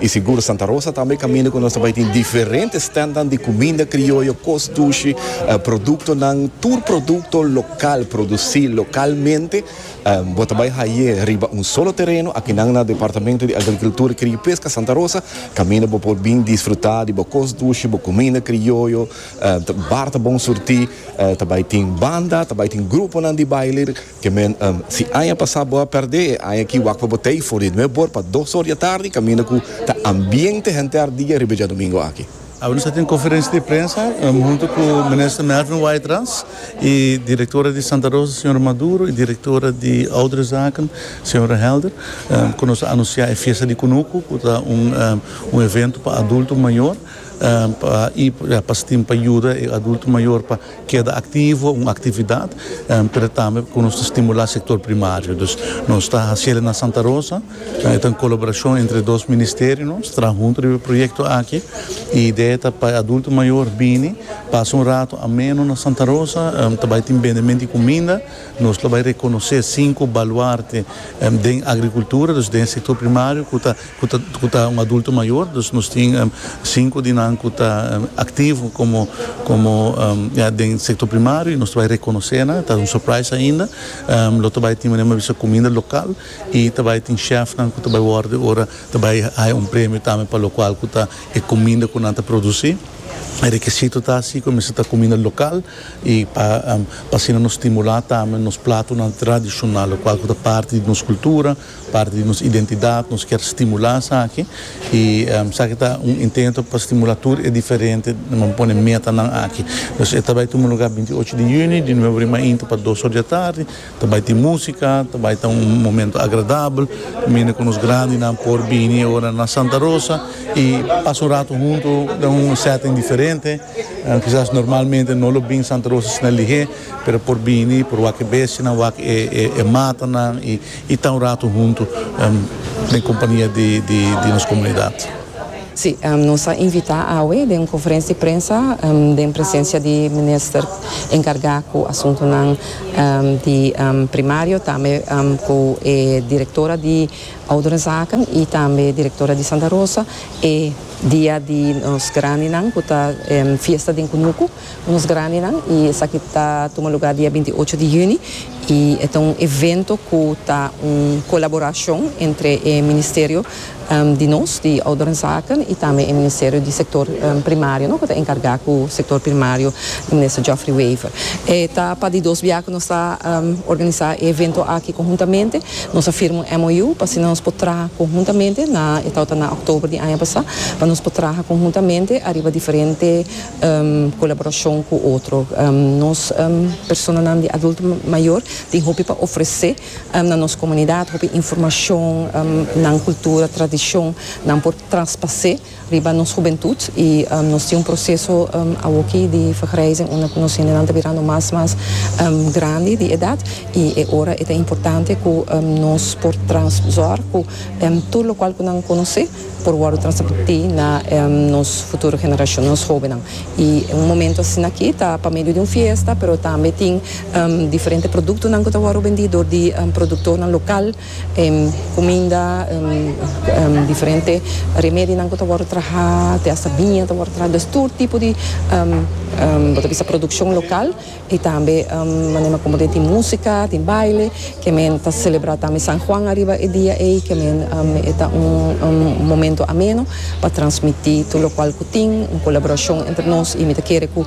Y sigur Santa Rosa tambe e caminda cu nos ta bay tin diferente standnan di cuminda crioyo, cos dushi, productonan, tur producto local produci localmente bo ta bay haye riba un solo tereno akinan na Departamento di Agricultura Cria y Pesca Santa Rosa caminda bo por bin disfruta di bo cos dushi, bo cuminda crioyo, bar ta bon surti, ta bay tin banda, ta bay tin gruponan di baile Ke men, si aña pasá bo a pèrdè e aña akí wak pa bo tei for di nuep bor pa dos or di atardi kaminda ku ta ambiente henter dia riba djadumingu aki. Awor nos a tin konferensia di prensa huntu ku Minister Melvin Waitrans i Direktora di Santa Rosa Señora Maduro i Direktora di Ouderenzaken Señora Helder ku nos a anunsiá e Fiesta di Kunuku ku ta un evento pa adulto mayor. i pa stim pa yuda e adulto mayor pa keda activo un actividad pero tambe cu nos ta stimula sector primario dus nos ta haciel na Santa Rosa e ta un colaboracion entre dos ministerio nos traha hunto riba e proyecto aki y idea ta pa e adulto mayor bini pasa un rato ameno na Santa Rosa ta bay tin bendemento di cuminda nos lo bay reconoce cinco baluarte den agricultura dus den sector primario cu ta ku ta un adulto mayor, dus nos tin sinku di nan ku ta aktivo komo komo ya den sektor primario y nos ta bai rekonosé nan, ta un surprise ainda, lo ta bai tin manera mi a bisa kuminda lokal y ta bai tin chef nan ku ta bai wòrdu ora ta bai haña un premio tambe pa lokual ku ta e kuminda ku nan ta produsí, e rekisito ta si ku a mester ta kuminda lokal y pa pa asina nos stimulá tambe nos platonan tradishonal lokual ku ta parti di nos kultura. Parti di nos identidad, nos kier stimula esaki y esaki ta un intento pa stimula tur e diferente nan pone metanan aki. Entonces e ta bay tuma lugar binti ocho di juni di nueve ora mainta pa dos ora di atardi, ta bay tin musica, ta bay ta un momento agradabel, mina cu nos grandinan por bini e ora na Santa Rosa y pasa un rato hunto den un setting diferente, quizas normalmente no lo bin Santa Rosa asina lihe pero por bini, por wak e bestianan, wak e matanan y. Y ta un rato hunto den compania di nos comunidad. Si, nos a invita awe den un conferencia di prensa den presencia di Minister encarga cu asuntonan di Primario, tambe cu e Directora di Ouderenzaken y tambe e Directora di Santa Rosa e dia di nos grandinan cu ta fiesta den Cunucu. Nos Grandenan y esaki ta tuma lugar dia binti ocho di juni y e ta un evento cu ta un colaboracion entre e Ministerio di nos di Ouderenzaken y tambe e Ministerio di Sector Primario cu ta encarga cu Sector Primario di Minister Geoffrey Wever. E ta pa di dos bia cu nos ta organiza e evento aki conhuntamente. Nos a firma un MOU pa asina nos por traha conhuntamente na e tabata na October di aña pasa pa nos por traha conhuntamente ariba diferente colaboracion cu otro. Nos personanan di adulto mayor tin hopi pa ofrece na nos comunidad, hopi informacion, nan cultura, tradicion, nan por traspase riba nos hubentud y nos tin un proceso awoki di vergrijzing unda cu nos hendenan ta birando mas mas grandi di edad y e ora e ta importante cu nos por trans zorg cu tur locual cu nan conoce por wòrdu transmití na nos futuro generashon, nos hóbennan. I un momentu asina akí ta pa medio di un fiesta, pero tambe tin diferente produktonan ku ta wòrdu bendí dor di produktornan lokal, kuminda, diferente remedionan ku ta wòrdu trahá, te asta biña ta wòrdu trahá. Dus tur tipo di bo ta bisa produkshon lokal. Y tambe manera como tin musica, tin baile, que men ta celebra tambe San Juan ariba e dia ey, que men e ta un momento ameno pa transmiti tur locual cu tin, un colaboracion entre nos y mi ta kere cu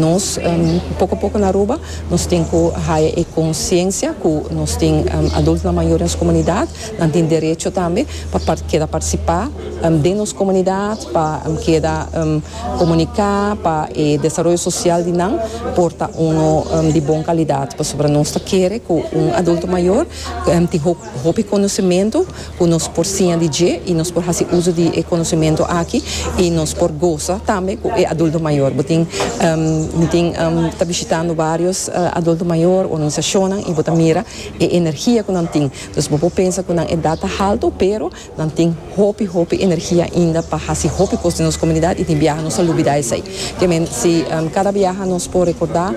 nos poco poco na Aruba nos tin cu haya e conciencia cu nos tin adultonan mayor den nos comunidad, nan tin derecho tambe pa keda participa den nos comunidad, pa keda. Komuniká pa e desaroyo sosial di nan por ta uno di bon kalidat pasobra nos ta kere ku un adulto mayor tin hopi konosementu ku nos por siña di dje i nos por hasi uso di e konosementu aki i nos por gosa tambe ku e adulto mayor. Bo tin mi tin ta bishitando varios adulto mayor organisashonnan i bo ta mira e energia ku nan tin. Entonces bo por pensa ku nan edat ta haltu pero. Nan tin hopi hopi energia ainda pa hasi hopi cos den nos comunidad y tin biaha nos a lubida esey. Ke men si cada biaha nos por recorda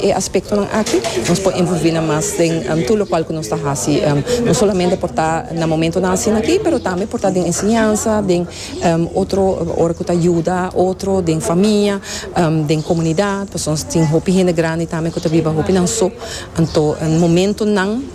e aspectonan aki nos por envolvi nan mas den tur locual cu nos ta hasi. No solamente por ta na momentonan asina aki pero tambe por ta den enseñansa, den otro ora cu ta yuda otro den famia, den comunidad pasobra nos tin hopi hende grandi tambe cu ta biba hopinan so. Anto momentonan.